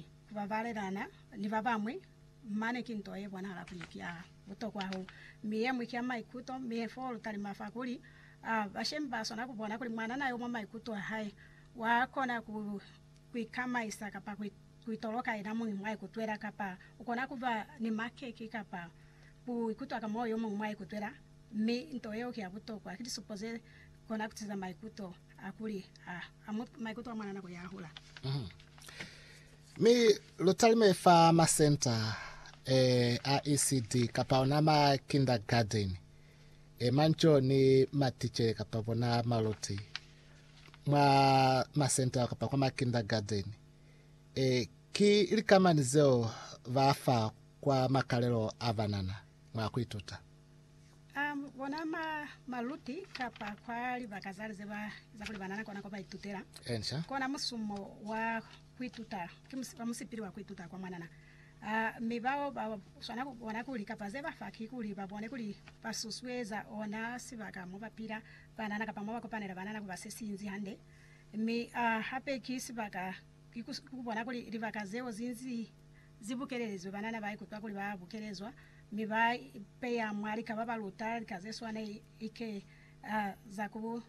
Ku babalelana ni ba bañwi mane ki nto ye bonahala kuli ki ya butokwa hahulu, mi ye ñwi ki ya maikuto. Mi he foo lu talima fa kuli, A bashemi ba swana ku bona kuli mwanana yo mwa maikuto a hae wa kona ku ikamaisa kapa ku itoloka yena muñi mwa ikutwela, kapa u kona ku ba ni makeke kapa ku ikutwa ka moyo yo muñwi mwa ikutwela? Mi nto yeo ki ya butokwa. Ki lisupo ze kona ku tiisa maikuto. A kuli, Ha a mu maikuto a mwana nako ya hula. Mi lu talime fa masenta e a ECD kapa ona ma kindergarten e manco ni maticele kapa bona maluti mwa masenta ao kapa kwa ma kindergarten. E, ki likamani zeo ba fa kwa makalelo a banana mwa ku ituta. A bona mwa maluti kapa kwa libaka za lize ba za kuli banana kona kwa ba itutela. Answer. Kona musumo wa kuituta ki mus, wa musipili wa kuituta kwa mwanana. A mi bao ba swana ku bona kuli kapa ze ba fa ki kuli ba bone kuli ba susueza ona sibaka mo ba pila banana kapa mo ba kopanela banana ku ba se si inzi hande. Mi a hape ki sibaka ki ku, ku bona kuli libaka zeo zi inzi Zi bukelelizwe banana ba ikutwa kuli ba bukelezwa, mi ba ipeya mwa lika ba ba luta lika ze swana like a za ku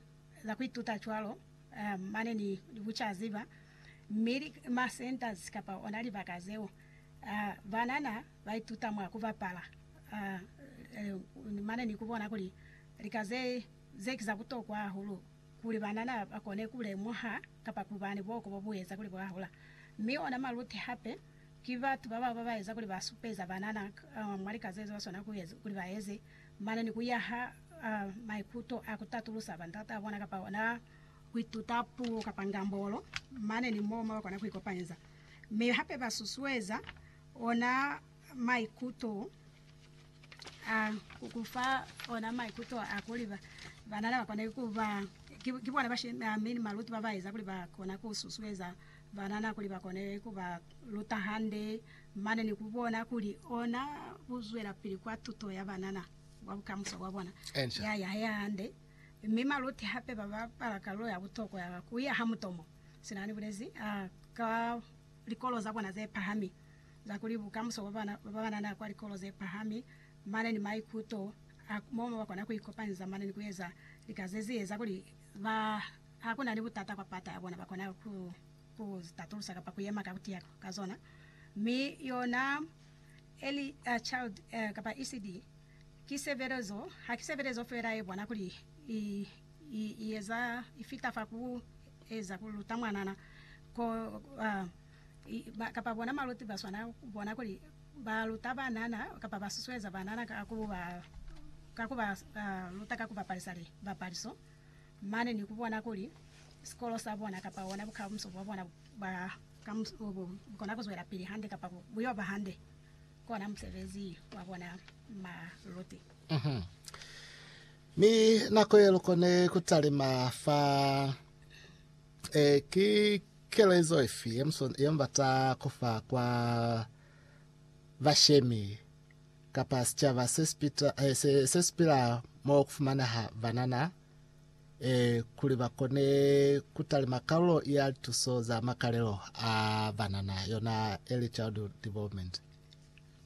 za ku ituta cwalo a mane ni bucaziba, mi ma centers kapa ona libaka zeo a banana ba ituta mwa ku bapala a mane ni ku bona kuli lika ze ze ki za butokwa hahulu kuli banana ba kone ku lemuha kapa ku ba ni buhoko bo bu eza kuli bwa hola. Mi ona maluti hape ki batu ba baba ba eza kuli ba supeza banana mwa lika ze ba swanela kuli ba eze, mane ni ku yaha maikuto a ku tatulusa bandat'a bona kapa ona ku ituta puo kapa ngambolo mane ni mo ba kona ku ikopanyeza. Mi hape ba susueza ona maikuto. A ku ku fa ona maikuto a kuli ba, banana ba kona ku ba ki, ki bona bashemi a mi ni maluti ba ba eza kuli ba kona ku susueza banana kuli ba kone ku ba luta hande mane ni ku bona kuli ona ku zwelapili kwa tuto ya banana kwa bukamuso bwa bona Ensha. ya yahe hahande. Mi maluti hape ba bapala kalulo ya butokwa ya ku yaha mutomo, sina ni bulezi, a ka likolo za bona ze pahami. za kuli bukamuso bwa bana ba banana kwa likolo ze pahami mane ni maikuto a momo ba kona ku ikopanyeza mane ni ku eza lika ze zi eza kuli ba ha ku na ni butata kwa pata ya bona ba kona ku ku zi tatulusa kapa ku yema ka ku tiya ka zona. Mi yona Early Child kapa ECD ki sebelezo, ha ki sebelezo fela ye bona kuli i i i eza i fita fa ku eza ku luta mwanana ko kapa bona maluti ba swana ku bona kuli ba luta banana kapa ba susueza banana ka ku ba ka ku ba luta ka ku bapalisa li bapaliso mane ni ku bona kuli sikolo sa bona kapa ona bukamuso bwa bona ba ka bu kona ku zwela pili hande kapa bu yo ba hande kona musebezi wa bona maluti. Mm -hmm. Mi nako ye lukone kutalima fa e ki Kelezo ifi ye musoni ye mubata kufa kwa bashemi kapa sicaba sesipila mo kufumaneha banana kuli bakone kutalima kalulo ya lituso za makalelo a banana, yona Early Childhood Development?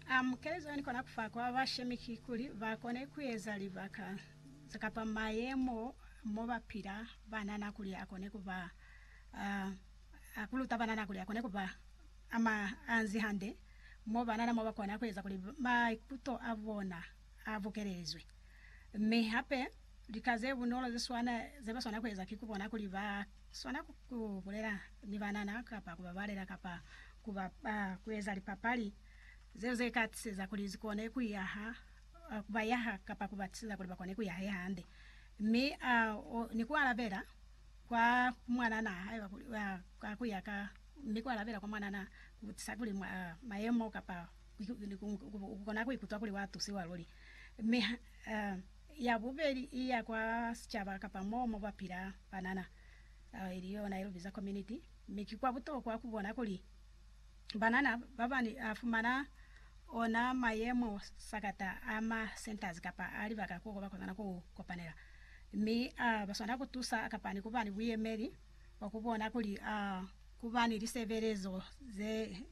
Um, kelezo yani kona kufa kwa bashemi kikuli bakone kueza libaka kapa mayemo mobapila banana kuli akone kuba A a ku luta banana kuli a kone ku ba a ma anzi hande, mo banana mo ba kona ku eza kuli maikuto a bona a bukelezwe. Mi hape, lika ze bunolo ze swana ze ba swana ku eza ki ku bona kuli ba swana ku ku bulela ni banana kapa ku ba balela kapa ku ba ba ku eza lipapali zeo ze ka tiseza kuli zi kone ku yaha ku ba yaha kapa ku ba tiseza kuli ba kone ku yaha hande. Mi a o ni ku alabela kwa mwananaa hae ka kuli aa ka kuya ka mi kwa labela kwa mwananaa ku sa kuli mwa mayemo kapa ku kona ku ikutwa kuli wa tusiwa luli. Mi ha aa ya bubeli i ya kwa sicaba kapa moo mo kwa pila banana, ili yona i lu biza community, mi ki kwa butokwa ku bona kuli Banana babani a fumana ona mayemo sakata a ma centers kapa a libaka ko ba kozana ku kopanela, mi a ba swanela ku tusa kapa ni kuba ni buyemeli bwa ku bona kuli a ku ba ni lisebelezo ze